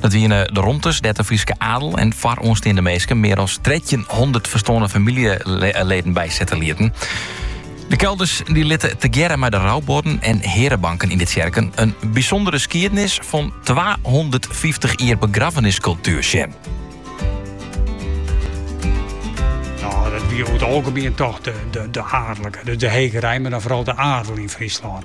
Dat wiene de romtes dêr't de Fryske adel en foaroansteande minsken mear as trettjinhûndert ferstoarne famyljeleden bysette lieten. De kelders die litte tegearre mei de roubuorden en hearebanken yn de tsjerken in bysûndere skiednis fan twahûndertfyftich jier begraffeniskultuer sjen. Nou, dat wie oer it algemien toch de adellike, dus de hegerein, mar dan foaral de adel yn Fryslân.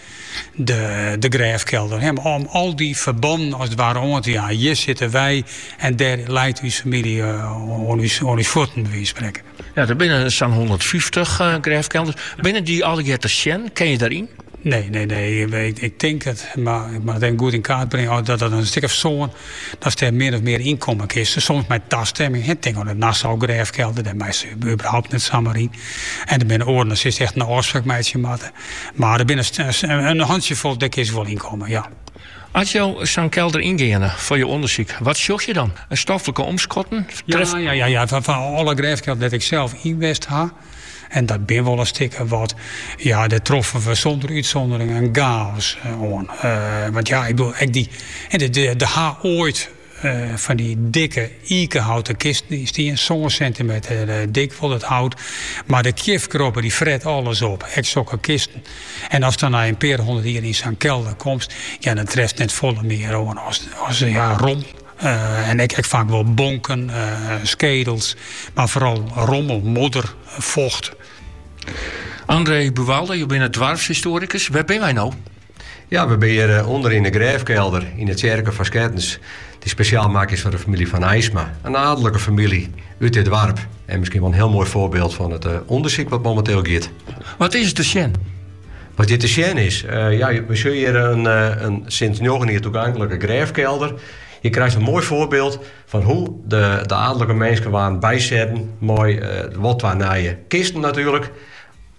de grêfkelder. Om al dy ferbannen as it ware oan te jaan. Hjir sitte wy en dêr leit ús famylje eh, oan ús fuotten, by wise fan sprekken. Ja, der binne sa'n hûndertfyftich eh, grêfkelders. Binne dy allegear te sjen? Kin je daaryn? Nee, nee, nee. Ik, ik tink it, mar ik moat it even goed yn kaart bringe. Oh, dat dat in stik of sân, datst der min of mear yn komme kinst. Soms mei tastimming. Ik tink oan de Nassau-grêfkelder, dêr meist überhaupt net samar yn. En der binne oaren, dêr silst echt in ôfspraak meitsje moatte. Mar der binne in hantsjefol dêr kinst wol yn komme, ja. As jo sa'n kelder yngeane foar jo ûndersyk, wat sjoch je dan? Stoflike omskotten? Trefkesels? Ja, ja, ja, fan alle grêfkelders dêr't ik sels yn west ha, en dat binne wol in stik of wat, ja, dêr troffen we sûnder útsûndering in chaos oan. Want ja, ik bedoel, ek dy, dêr ha oait. fan dy dikke ikehouten kisten stien, sân sentimeter eh, dik wol it hout. Mar de kjifkrobbe dy fret alles op, ek sokke kisten. En ast dan nei in pear hûndert jier yn sa'n kelder komst, ja, dan trefst net folle mear oan as, as ja, rom. Eh, en ek ek faak wol bonken, eh, skedels, mar foaral rommel, modder, focht. André Buwalda, jo binne doarpshistoarikus. Wêr binne wy nou? Ja, we binne hjir eh, ûnder yn de grêfkelder yn de tsjerke fan Skettens, dy't spesjaal makke is foar de famylje Van Aysma. In aadlike famylje út dit doarp en miskien wel in hiel moai foarbyld fan it eh, ûndersyk wat momenteel giet. Wat is te sjen? Wat hjir te sjen is, eh, ja, we sjogge hjir in, eh, in sinds njoggen jier toeganklike grêfkelder. Je krije in moai foarbyld fan hoe de, de adellike minsken waarden bysetten. Mei, eh, wat twa nije kisten natuerlik.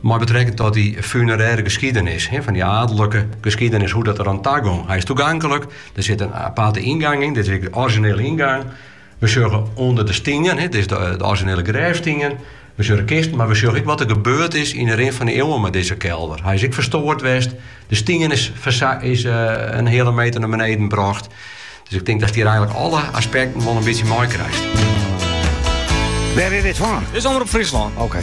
Mei betrekking tot dy funerêre geskiedenis, fan dy aadlike geskiedenis, hoe't dat der oan ta gong. Hy is toeganklik, der sit in aparte yngang yn, dit is ek de orizjinele yngang. We sjogge ûnder de stien, dit is de orizjinele grêfstien, we sjogge de kisten, mar we sjogge ek wat der gebeurd is yn 'e rin fan 'e iuwen mei dizze kelder. Hy is ek ferstoard west, de stien is is in heale meter nei beneden brocht. Dus ik denk datst hjir eigenlik alle aspekten wol in bytsje meikrijst. Wêr is dit fan? Dit is Omrop Fryslân. Oké.